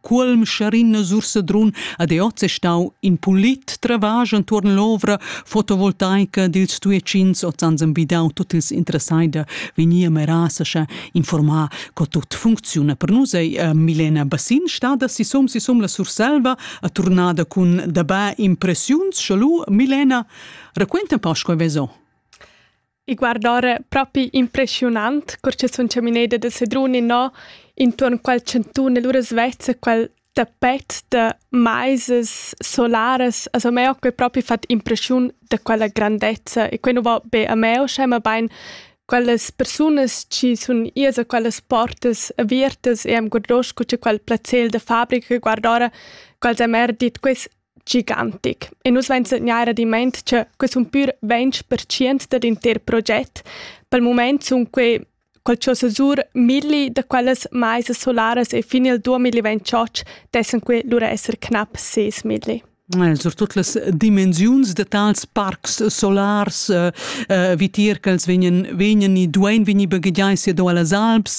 Cuolm Charin sur Sedrun ad oz è stau in pulit travag entuorn l'ovra fotovoltaica dils Tuecins oz ans envidau tut ils interessai da vegnir a Merasa sche informar co tut funcziuna. Per nus ei eh, Milena Bassin stada sisom sisom la Surselva a turnada cun dabà impressiuns. Schalu, Milena, raquenta un po sco veso. I guardora propi impreschiunant, cur che sun chamineda da Sedrun innò intuorn quel chantun e lura svezza quel tapet da maisas solaras. Also a me ho quel propi fat impreschiun da quella grandezza e quai nu va be a me uschè, mabain quellas persunas chi sun ias a quellas portas aviertas e am guardoscho cun quel plazel da fabrica e guardora quels han eir dit quels gigantic. E nus vain segnair adimmaint cha que sun pür 20% dad inter proget. Pel mumaint sun que col cho sesur milli da quellas maisas solaras e fin il 2028 dessan que lura esser knap 6 milli. Surtut las dimensiuns da tals parcs solars eh, eh, vitier ch'els vegnan, vegnan e duain vegnir baghegiai sia do a las Alps,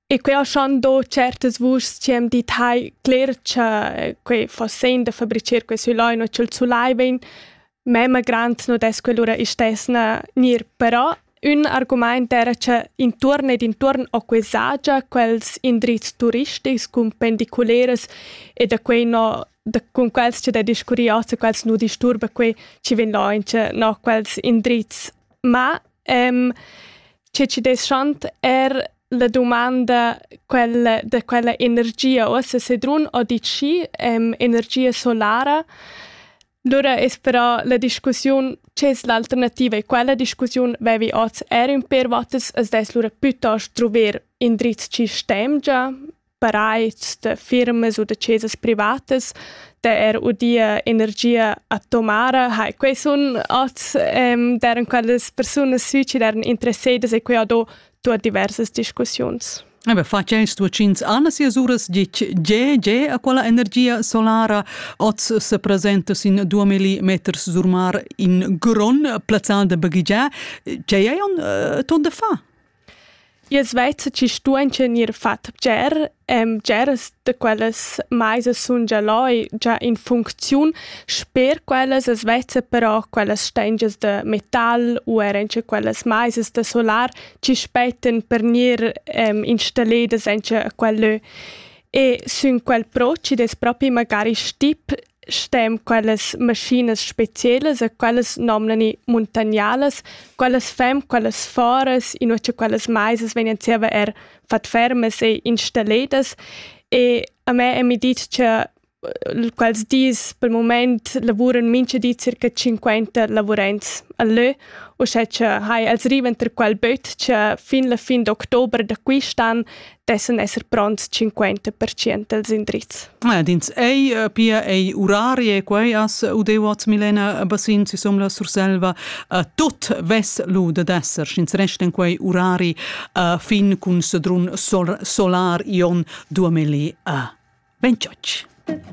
E quei ha schon do certas vuschs che am dit hai cler che quei fa sen da fabricer quei sulai no ch'el sulai vegn mema grand no des quell'ura istesna nir però ün argumaint era che intuorn ed intuorn ho quei sagia quels indrizs turistics cun pendiculeras e da quei no da cun quels che da discurri ossa quels nu disturba quei chi vegn là in che no quels indrizs ma ehm che ci des schant er La dumanda quella, da quella energia ossa sedrun o dit schi em energia solara, lura es però la discussiun che es l'alternativa e quella discussiun vevi oz er ün per votas, as dess lura plütost druver indrizs chi stem già paraids da firmas u da chesas privatas da er udia energia atomara hai quei sun oz ehm deran quellas persunas suici deran interessadas e quei ha do tua diversas discussiuns Ebe facens tuocins Anna sias uras dic GG a quella energia solara oz se presenta sin 2000 meters sur mar in gron plazzal de baghigià. Ce ei un ton de fa? I's vezza chi stuaincha gnir fat bger, bgeras da quellas maisas sun già là già in funcziun. Sper quellas as vezza però quellas stengias da metal u eir auncha quellas maisas da solar chi spettan per gnir installedas auncha quel lö. E sün quel pro chi'd es propi magari stip stem quellas maschinas specielas e quellas nomnani muntagnalas, quellas fem, quellas foras, in che quellas maisas vegnan zieva er fat fermas e installadas e a me è mi dit che quels dis pel moment lavuran mincha di circa 50 lavurants a lö, uschè che hai els rivan ter quel böt che fin la fin d'october da quist'an dessan esser pronts 50 dals indrizs. Ed ins ei eh, pia ei urarie e quei as udeuots Milena Bassin si som la Surselva uh, tot ves lu de desser sch'ins resten quei urari uh, fin cun sedrun sol solar ion 2000 uh, 28.